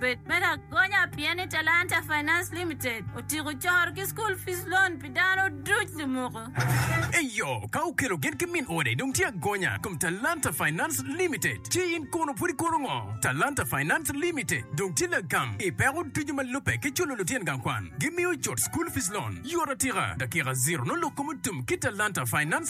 Bed me lagonya pien ni Talanta Finance Limited otyeko coro ki School Fees Loan pi dano duc lumuko. Eyo, ka okelo gen ki min ode dong tye agonya i kom Talanta Finance Limited. Ci in kono pud ikono ngo? Talanta Finance Limited dong tye lagam i peko ducu ma lubbe ki culo lutyen gang kwan. Gimiyo cut School Fees Loan yot atika, dakika ziro nongo lok kom otum ki Talanta Finance.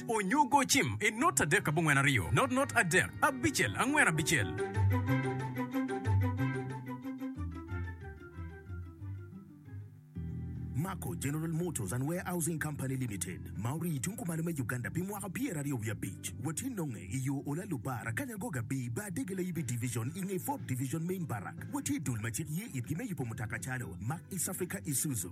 Onyo go cim i not adek abongwen aryo, not not adek abicel angwen abicel. Mako General Motors and Warehousing Company Limited ma orii i tung kumalo me Uganda pi mwaka pyeraryo wiye abic watye nonge i yo Ola Lubara, Kanyangoga bi bar dege layibi division i nge Fourth Division Main Barrack. Watye i dul ma cik ye itgi me yubo mutoka calo Mack East Africa Isuzu,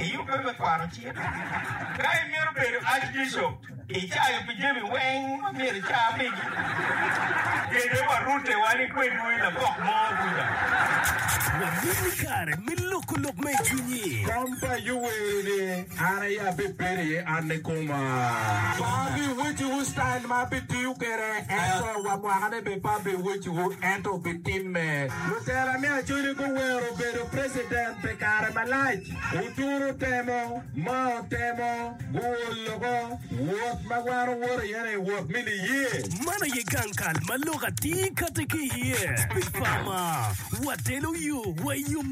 Iyubbe me kwaro cik? Ka imito bedo Archbishop, icayo pi jami weng ma myero ica pigi? Kede wa rute wa ni kwedwu i lagok mo kuca. Wabino i kare me loko lok ma i cwinyi. Tam pa Yoweri ni, An aye abibedo iye, an nikoma. Pa abiwecciwu citail ma abitiyo kwede, ento wa mwakane bene pe abiwecciwu, ento wubitimme. Lutela me Acholi guwero bedo president. Pi kare malac wuturo temo ma otemo guwo loko wot ma wan wowoto iye-ni, wot me niye. Man aye gang kal ma lok atir kati ki iye pi pama. Watelo yo wa i yo.